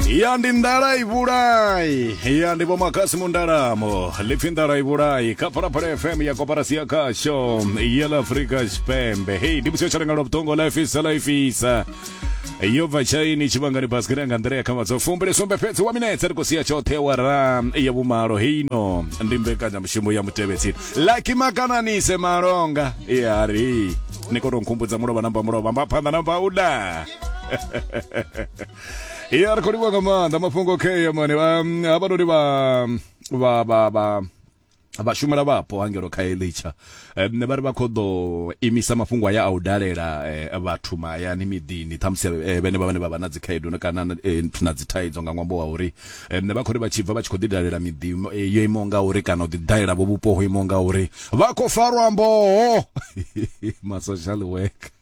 ya ndi ndala i vhulai ya ndi vhomakhasi mundalamo lipfi ndala i vhulai kha phalaphala fm ya koparasi ya khasho ya la afrika tshipembe hei ndi musi yo tshalengalo vhuṱongo la ifisa la ifisa yo bva tshaini tshivhangani basikiri anga nḓila ya khamadza fumbili sumbe fhedzi wa minetse ri khou sia tshoṱhe wa ra ya vhumalo heino ndi mbekanyamushumo ya mutevhetsini laki makananise malonga ya ri ni khou tou nkhumbudza mulovha namba mulovha mba phanḓa namba uda iye ari kholiwa nga maanḓa mafhungo kheyo mani um, havhanoni vha vha vha vha vhashumela vhapo hangelo kha elitsha um, vha ri vha khou ḓo imisa mafhungo aya a u dalela eh, vhathu mahayani miḓini ṱhamusi eh, vhene vha vhane vha vha na dzikhaedu na- kana na- eh, na dzithaidzo nga ṅwambo wa uri um, vha khou ri vha tshi bva vha tshi khou ḓi dalela miḓi eh, yo imaho nga uri kana u ḓi dalela vho vhupo ho imaho nga uri vha khou farwa mboho ma social worker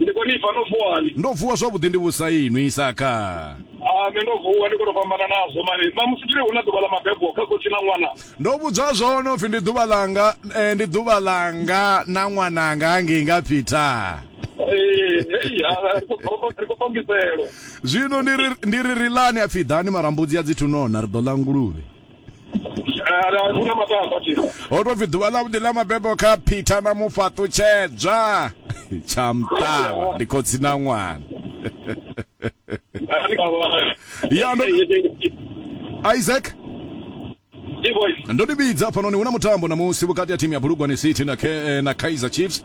Ndi khou ni pfa no vuwa ni. Ndo vuwa zwavhuḓi ndi vhusa inwi Isaka. Ah nṋe ndo vuwa ndi khou tou fhambana nazwo mani. Mamusi ndi hu na ḓuvha ḽa mabebo kha khotsi na ṅwana. Ndo vhudzwa zwone upfi ndi ḓuvha ḽanga eh, ndi ḓuvha ḽanga na ṅwananga hangei nga Peter. Ee, hei, ah, ri khou- ri khou fhambiselo. Zwino ndi ri ndi ri ri lani apfi ḓani marambudzi a dzithunona ri ḓo ḽa nguluvhe. ho to pfi ḓuvha ḽavhuḓi ḽa mabebo kha peter na mufhaṱutshedzwa tsha mṱala ndi khotsi na ṅwana ya ndo isaac ndo ni vhidza hafhanoni hu na mutambo namusi vhukati ha thimu ya bulugwane city na, eh, na kaizer chiefs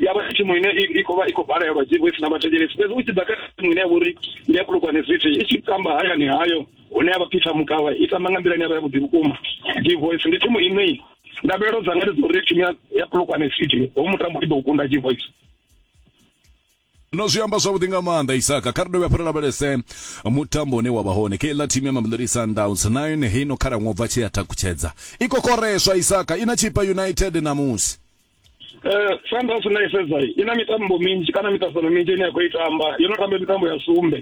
ya vha thimu ine i khou vha i khou balelwa dzi vho i sina vhathetshelesi fhedzi u tshi ḓa kha thimu ine ya vhori ndi ya khulukwane city i tshi tamba hayani hayo hune ya vha peter mukavha i tamba nga nḓila ine ya vha ya vhuḓi vhukuma dzi voice ndi thimu ine ndavhelelo dzanga ndi dza uri thimu ya khulukwane city ho mutambo i ḓo kunda dzi voice no zwi amba zwavhuḓi nga maanḓa isaka kha ri dovhe hafhu ri lavhelese mutambo une wa vha hone khe ḽa thimu ya mamelodi sundowns na yone heino khalaṅwa u bva tshi ya takutshedza i kokoreswa isaka i na chipa united ṋamusi Eh, Sundowns na i sedza i na mitambo minzhi kana miṱaṱisano minzhi ine ya khou i tamba yo no tamba mitambo ya sumbe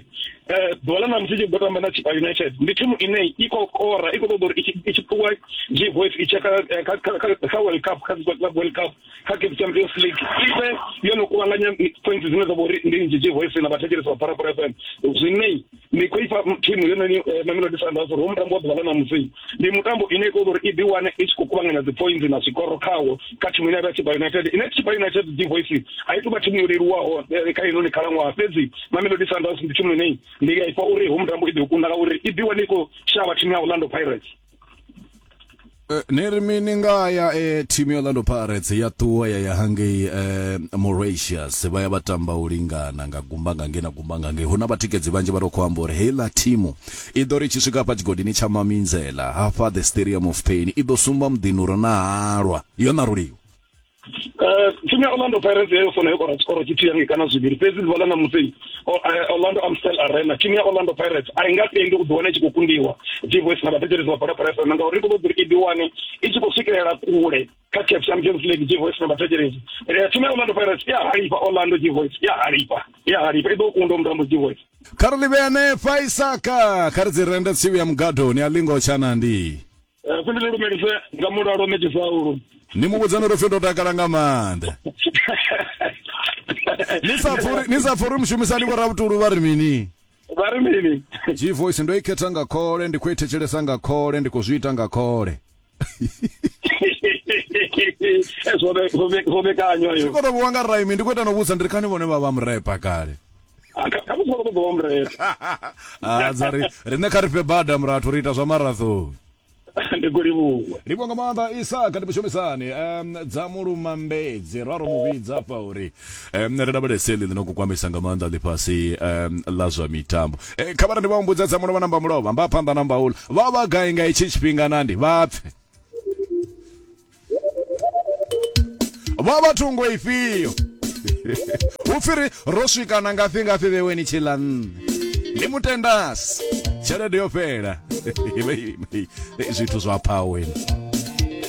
eh ḓuvha ḽa ṋamusi i tshi ḓo tamba na chipa united ndi thimu ine i khou kora i khou ṱoḓa uri i tshi- i tshi ṱuwa gvf i tshe kha eh, kha- kha- kha- kha world cup kha Super club world cup kha cape champions league i vhe yo no kuvhanganya points dzine dza vha uri ndi nnzhi gvf na vhathetshelesi vha parapara fm zwine ndi khou ifha thimu yononi eh, mamelodi sundowns uri ho mutambo wa ḓuvha ḽa ṋamusi ndi mutambo ine ikoda uri i ḓi wane i tshi khou kuvhanganya dzi points na zwikoro khawo kha thimu ine ya vha chipa united ine chipa united dzi voice a i tou vha thimu yo leluwaho eh, kha inoni khalaṅwaha fhedzi mamelodi sundowns ndi thimu ine ndi a ifha uri ho mutambo i ḓi u kunda ngauri i ḓi wane i khou shavha thimu ya orlando pirates Eh, ni ri mini nga ya e thimu ya Orlando Pirates ya ṱuwa ya ya hangei eh, Mauritius vha ya vha tamba u lingana nga gumba nga ngei na gumba nga ngei huna vhatikedzi vhanzhi vha ri khou amba uri heiḽa thimu i ḓo ri tshi swika hafha tshigodini tsha maminzela hafha the stadium of pain i ḓo sumba muḓini uri na halwa yo ṋaruliwa Eh, thimu ya orlando pirates yayo fona yo kora tshikoro tshithihi hangi kana zwivhili fhedzi ḓuvha ḽa ṋamusi O- eh, orlando amstel arena thimu ya orlando pirates a i nga tendi u ḓiwana i tshi khou kundiwa divoice na vhathetshelesi vha bola pirates na ngauri i khou ṱoḓa uri i ḓiwane i tshi khou swikelela kule kha caf champions league divoice na vhathetshelesi Eh, thimu ya orlando pirates i a halifha orlando divoice i a halifha i a halifha i ḓo kunda mutambo divoice kha ri livhe hanefha isaka kha ri dzi rende tsivi ya mugadoni a lingo tshanandi Eh, kundi ni lumelise nga mulalo meki saulu ni mu vhudzani uri pfi ndo takala nga maanḓa ni sa pfuri ni sa pfuri mushumisani vho rabutulu vha ri mini vha ri mini g voice ndo i khetha nga khole ndi khou i thetshelesa nga khole ndi khou zwi ita nga khole Eh, zwo ve- zwo ve- zwo vhekanywa yo koto vhuwa nga raimi ndi khou ita no vhudza ndi ri kani vhone vha vha murepa kale khamusi vha khou ṱoḓa wamrela ah, dza ri riṋe kha ri fhe bada murathu ri ita zwa marathon ndi khou livhuwa livhuwa nga maanḓa isaka ndi mushumisani um dza mulumambedzi raro mu vhidza afha uri um ri lavhelese ḽi ḽino kukwamisa nga maanḓa ḽifhasi um ḽa zwa mitambo e, kha vhara ndi vha humbudza dza mulova namba mulova mba phanḓa namba ula vha vha gai nga itshi tshifhinga nandi vha pfe vha vha thungo ifhio hu pfiri ro swika na ngafhi ngafhi vheweni tshila nṋe ndi mutendasi tshelede yo fhela zwithu zwa phaweni